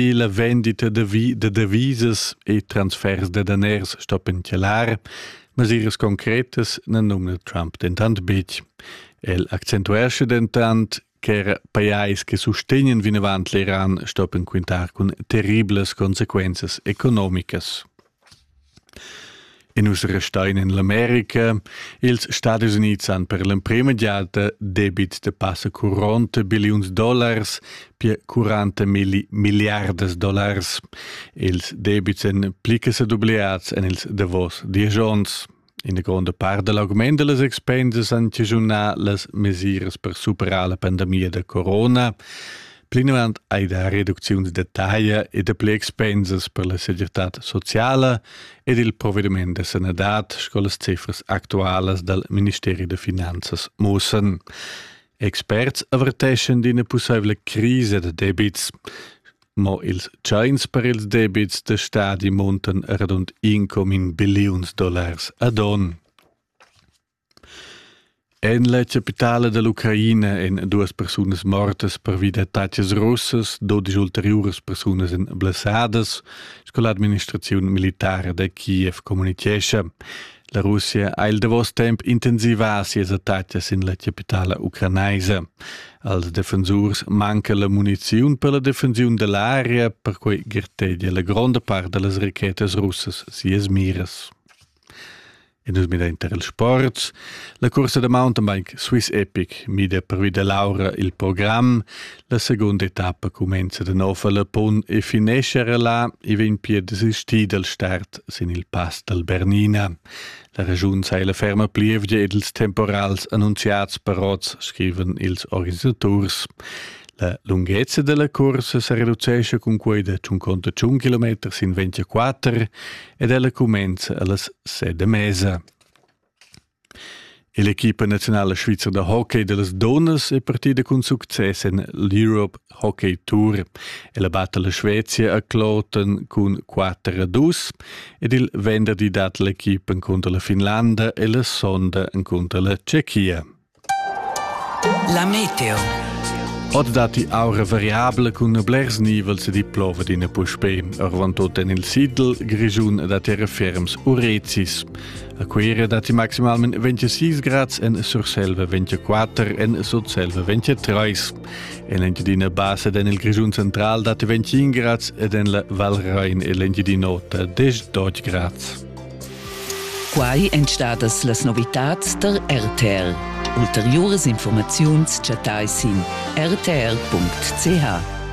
e la vendita da, vi, da devisas e transfers da daners stoppen chalar, mesiras concretas na numna Trump dentant betg. El accentuesce dentant che pajais che sustegnen vinavant l'Iran stoppen quintar cun terriblas consequenzas economicas. E nus restein en l'America. Ils Stadis Unids han per l'emprema giada debit da passa 40 billiuns dollars per 40 milli milliardas dollars. Ils debits èn pli che sedubliats en ils davos diesch onns. Ina gronda part da l'augment da las expensas han chaschunà las mesiras per superar la pandemia da corona. Plinavant hai dà reducziuns detaglier e dapli expensas per la segirtad sociala ed il provediment da sanadad, sco las cifras actualas dal Ministeri da finanzas mussan. Experts averteschan d'ina pussaivla crisa da debits. Mo ils tschains per ils debits da stadi muntan radund incomin billiuns dollars ad on. En la capitala dall'Ucraina èn duas persunas mortas pervi d'attacas russas, dodisch ulteriuras persunas èn blessadas, sco l'administraziun militara da Kiev communitgescha. La Russia ha il davos temp intensivà sias attacas sin la capitala ucranaisa. Als defensurs manca la muniziun per la defensiun da l'aria, perquai gartegia la gronda part da las rachetas russas sias miras. E nus mida inter il sport. La cursa da mountainbike Swiss Epic mida pervi da l'aura il program. La segunda etappa cumenza da nov alla pun e finescha era là e vegn pia desistida al start sin il pass dal Bernina. La regiun sei la ferma plievgia ed ils temporals annunziats per oz, scriven ils organisaturs. La lunghezza della corsa se reducesce con quei da 51 km sin 24 ed ella comenza allas 7 mesa. E l'equipa naziunala svizra da hockey da las dunnas è partida cun success en l'Europe Hockey Tour. Ella batta la Svezia a Kloten cun 4 a 2 ed il venderdi dat l'equipa contro la Finlanda e la sonda contro la Tschechia. La meteo. Od dati aura variabile cun blers nivels ed i plova d'ina puspè. Orvan tot en il Sidl, Grigiun dat era ferms urezis. A Cuira datti maximalment 26 grads en Surselva, 24 en Sutselva, 23. En l'Engiadina Bassa ed en il Grischun central datti 25 grads ed en la Val Rain e l'Engiadina Ota 10 grads. Quai èn stadas las novitads tar RTL. Ulteriuras informaziuns chattai sin rtl.ch.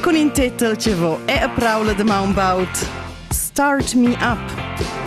Cun in tetel che vo è a praula da maun baud Start Me Up.